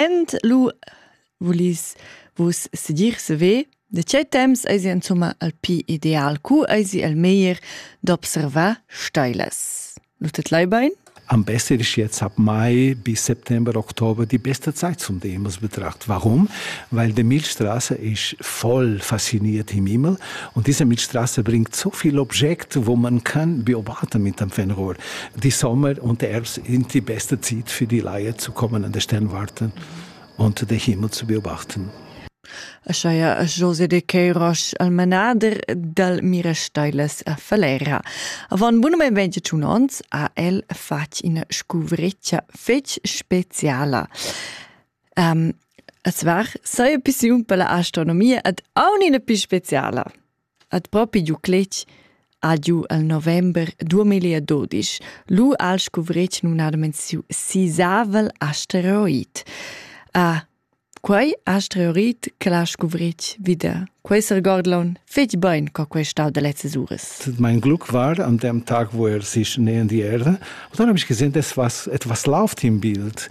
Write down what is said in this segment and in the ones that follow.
ent lu vulis vus sedir seve de tgei temps eisi insomma al pi ideal cu eisi el meglier d'observar steilas lu tet lei bein am besser ist jetzt ab Mai bis September, Oktober die beste Zeit zum Demus betracht. Warum? Weil die Milchstraße ist voll fasziniert im Himmel und diese Milchstraße bringt so viele Objekte, wo man kann beobachten mit dem Fernrohr. die Sommer und erst in die beste Zeit für die Laie zu kommen an der Sternwarten und den Himmel zu beobachten. Ascheia a José de Queiroz al manader dal Mirasteilas a Falera. Avon bun men 21 ons ha el fatg ina scuvreccia fetg speciala. Um, es var, sai pissiun per la astronomia ad aun ina più speciala. At propi giu cletg ha giu el november duamilla e dudisch lu ha el scuvretg numnadamein siu sisavel asteroid. quei asteroid che l'ha scuvretg vida. Quei seregordlon fetg bein co quei stau da lezzas uras. Mein Glück war an dem Tag, wo er sich nähern die Erde. Und dann habe ich gesehen, das was etwas läuft im Bild.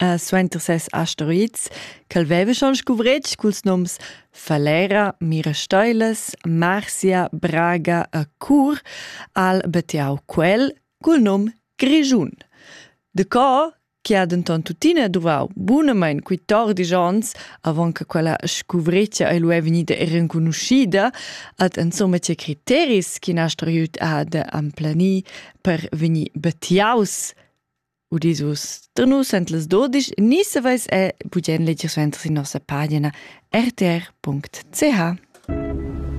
Uh, suenter ses asteroids ch'el veva schon scuvretg culs noms Falera, Mirasteilas, Marsia, Braga e Cur, al bettiau quel cul nom Grischun. De co che ha denton tuttina duvau bunamein quittordisch onns avon che quella scuvretgia ei lu è vegnida renconuschida, hat insomma tge criteris ch'in asteroid ha da emplanir per vegnir bettiaus Udis vus da nus en las dodisch ni saveis è bugen leger suenter sin nossa pagina rtr.ch.